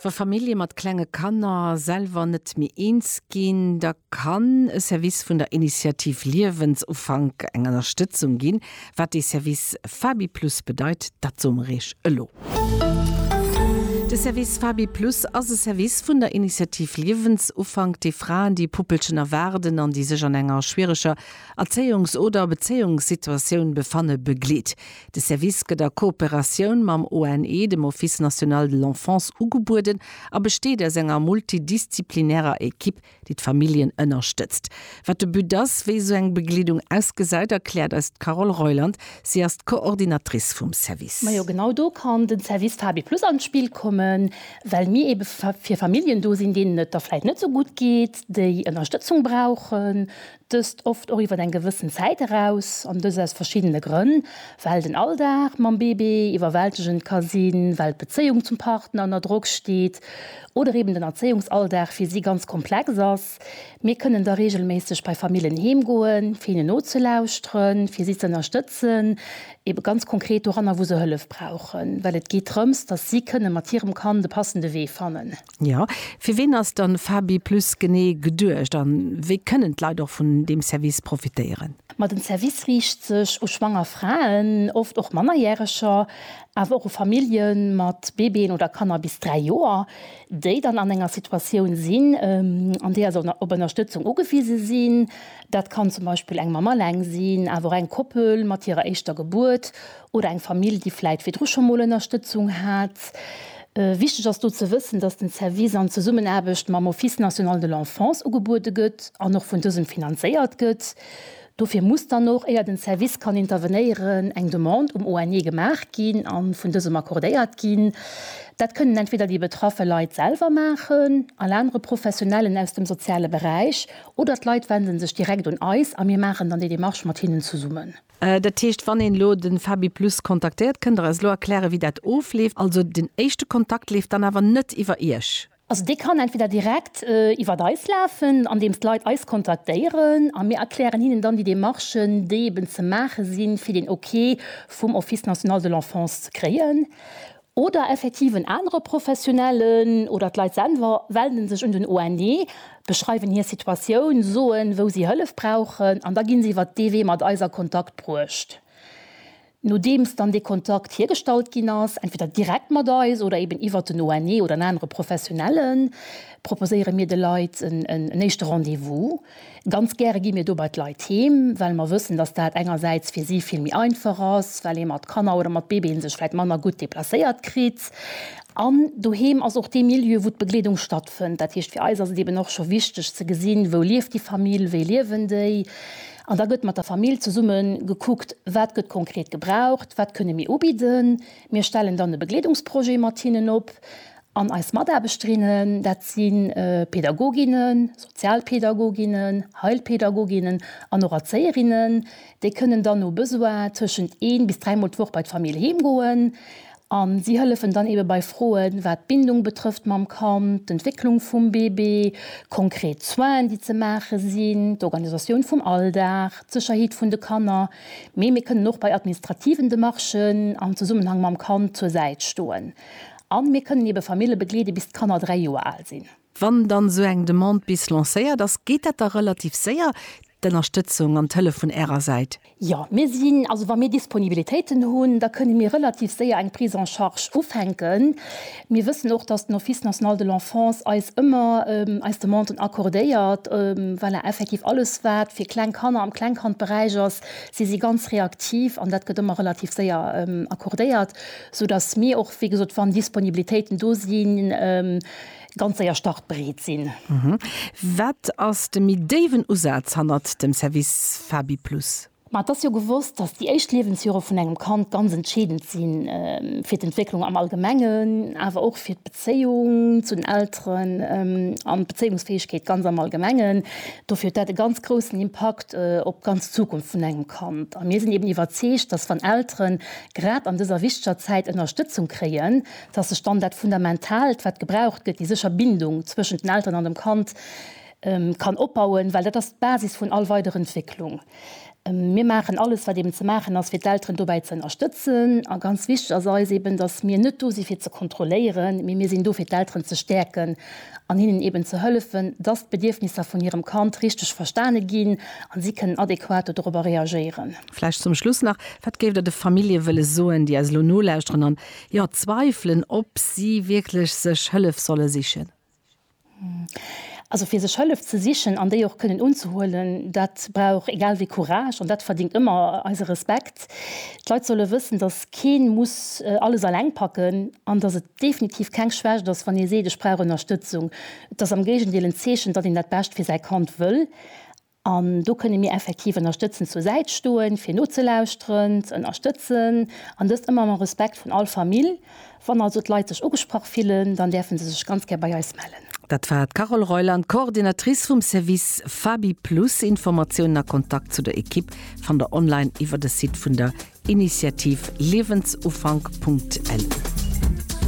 Wa Famillje mat klenge Kanner selwer net méi eens ginn, da kann e Service vun der Initiativ Liewensufank eng Ënnerstëtzung ginn. Wat dee Service Fabi Plus bedeit, dat soe mer Iech elo. De Service Fabi Plus ass e Service vun der Initiativ Liewensufank, dee Fraen, déi e Puppelchen erwaarden an déi sech an enger schwiereger Erzéiungs oder Bezéiungssituatioun befanne begleet. De Service gëtt a Kooperatioun mam ONE, dem Office National de l'Enfance, ugebueden a besteet aus enger multidisziplinärer Ekipp, déi d'Familljen ënnerstëtzt. Wat de But ass, wéi esou eng Begleedung ausgesäit, erkläert eis d'Carole Reuland. Si ass d'Coordinatrice vum Service. Majo, genau do kann den Service Fabi Plus an d'Spill kommen, well mir eebe fir Familljen do sinn, deenen et da vläit net esou gutt geet, déi Ënnerstëtzung brauchen, Dëst oft och iwwer eng gewëssen Zäit eraus, an dëst aus verschiddene Grënn, well den Alldag mam Bébé iwwerwältegend ka sinn, well d'Bezéiung zum Partner ënner Drock steet oder eben den Erzéiungsalldag fir si ganz komplex ass. Mir kënnen da reegelméisseg bei Famillen heem goen, fir hinnen nozelauschteren, fir si ze ënnerstëtzen, ebe ganz konkret doranner, wou se Hëllef brauchen, well et geet drëms, dass si kënne mat hirem Kand e passende Wee fannen. Jo, fir ween ass dann Fabi Plus genee geduecht an wéi kënnen d'Leit och vun deem Service profitéieren? Ma den Service riicht sech u schwanger Fraen, oft och Mannerjäreger, awer och u Familljen mat Bébéen oder Kanner bis 3 Joer, déi dann an enger Situatioun sinn, an deeër se op Ënnerstëtzung ugewise sinn. Dat kann zum Beispill eng Mamm alleng sinn, awer och eng Koppel mat hirer éischter Gebuert Oder eng Famill, déi vläit virdru scho mol Ënnerstëtzung hat. Wichteg ass do ze wëssen, dass den Service an Zesummenaarbecht mam Office national de l'enfance ugebuede gëtt an och vun dësem finanzéiert gëtt. Dofir muss dann och, éier den Service kann intervenéieren, eng Demande um ONE gemaach ginn a vun dësem accordéiert ginn. Dat kënnen entweder déi betraffe Leit selwer maachen, all anere Professionellen aus dem soziale Beräich oder d'Leit wende sech direkt un eis a mir maachen dann déi Demarche mat hinnen zesummen. Dat heescht, wann een elo de Fabiplus kontaktéiert, kënnt Der eis elo erklären, wéi dat ofleeft? Also den éischte Kontakt leeft dann awer net iwwer Iech? Also dee kann entweder direkt iwwer eis lafen, andeems d'Leit eis kontaktéieren a mir erklären hinnen dann déi Demarchen, déi eben ze maache sinn, fir den Ok vum Office national de l'enfance ze kréien. Oder effektiv en anere Professionellen oder d'Leit selwer wenden sech un den ONE, beschreiwen hir Situatioun, soen, wou si Hëllef brauchen an da ginn se iwwert dee Wee mat eis a Kontakt bruecht. Nodeems dann dee Kontakt hiergestallt ginn ass, entweder direkt mat eis oder eben iwwert den ONE oder en anere Professionellen, proposéiere mir de Leit en éischte Rendez-vous. Ganz gäre gi mir do bei d'Leit heem, well mer wëssen, dass dat engersäits fir si vill méi einfach ass, well ee mat Kanner oder mat Bébéen sech vläicht manner gutt deplacéiert kritt. An doheem ass och dee Milieu, wou d'Begleedung stattfënnt. Dat heescht, fir eis ass et eeben och scho wichteg ze gesinn, wou lieft déi Famill, wéi liewen déi. An da gëtt mat der Famill zesumme gekuckt, wat gëtt konkret gebraucht, wat kënne mir ubidden. Mir stellen dann e Begleedungsprojet mat hinnen op An eis Mataarbechterinnen, dat si Pädagoginnen, Sozialpädagoginnen, Heilpädagoginnen an och Erzéierinnen, déi kënnen dann no Besoin tëschent een bis dräimol d'Woch bei d'Famill heem goen. A si hëllefen dann eebe bei Froen, wat d'Bindung betrëfft mam Kand, d'Entwécklung vum Bébé, konkret Soinen, déi ze maache sinn, d'Organisatioun vum Alldag, d'Sécherheet vun de Kanner. Mee mir kënnen och bei administrativen Demarchen am Zesummenhang mam Kand zur Säit stoen. A mir kënnen ebe Famille begleede bis d'Kanner 3 Joer al sinn. Wann dann esou eng Demande bis lancéiert ass, geet dat da relativ séier, d'Ënnerstëtzung an d'Hëllef vun Ärer Säit? Jo, mir sinn, also wa mir Disponibilitéiten hunn, da kënne mir relativ séier eng Prise en charge ufänken. Mir wëssen och, dass den Office national de l'enfance eis ëmmer eis Demanden accordéiert. Voilà, effektiv alles wat fir kleng Kanner am Klengkandberäich ass, si si ganz reaktiv an dat gëtt ëmmer relativ séier accordéiert. sou dass mir och, wéi gesot, wann Disponibilitéiten do sinn, ganz séier startbereet sinn. Wat ass de méi déiwen Usaz hannert dem Service FabiPlus? Ma et ass jo gewosst, dass déi éischt Liewensjore vun engem Kand ganz entscheedend si fir d'Entwécklung am Allgemengen, awer och fir d'Bezéiung zu den Elteren an d'Bezéiungsfäegkeet ganz am Allgemengen. Dofir huet dat e ganz groussen Impakt op d'ganz Zukunft vun engem Kand. A mir sinn eben iwwerzeegt, dass wann Elteren, grad an dëser wichteger Zäit Ënnerstëtzung kréien, dass sech dann dat Fundamentaalt, wat gebraucht gëtt, déi sécher Bindung zwëschent den Elteren an dem Kand, kann opbauen, well dat ass d'Basis vun all weider Entwécklung. Mir maachen alles, wat eeben ze maachen ass, fir d'Elteren dobäi ze ënnerstëtzen. A ganz wichteg ass eis eeben, dass mir net do si fir ze kontrolléieren, mee mir sinn do fir d'Elteren ze stäerken an hinnen eeben ze hëllefen, dass d'Bedierfnisser vun hirem Kand richteg verstane ginn a si kënnen adequat do dorobber reagéieren. Vläicht zum Schluss nach, Wat géift Der de Famillje wëlle soen, déi eis elo nolauschteren an, jo, zweifelen, ob si wierklech sech Hëllef solle sichen? Also fir sech Hëllef ze sichen an déi och kënnen unzehuelen, dat brauch egal wéi Courage an dat verdingt ëmmer eise Respekt. D'Leit solle wëssen, datt kee muss alles alleng packen an datt et definitiv keng Schwächt ass, wann ee seet, ech brauch Ënnerstëtzung. Et ass am Géigendeel en Zeechen, datt een dat Bescht fir säi Kand wëll. An do kënne mir effektiv ënnerstëtzend zur Säit stoen, fir nozelauschteren, ze ënnerstëtzen, an dëst ëmmer mam Respekt vun all Famill. Wann also d'Leit sech ugesprach fillen, dann däerfe se sech ganz gär bei eis mellen. Dat war d'Carole Reuland, Coordinatrice vum Service FabiPlus. Informatiounen a Kontakt zu der Equipe fannt der online iwwer de Site vun der Initiativ liewensufank.lu.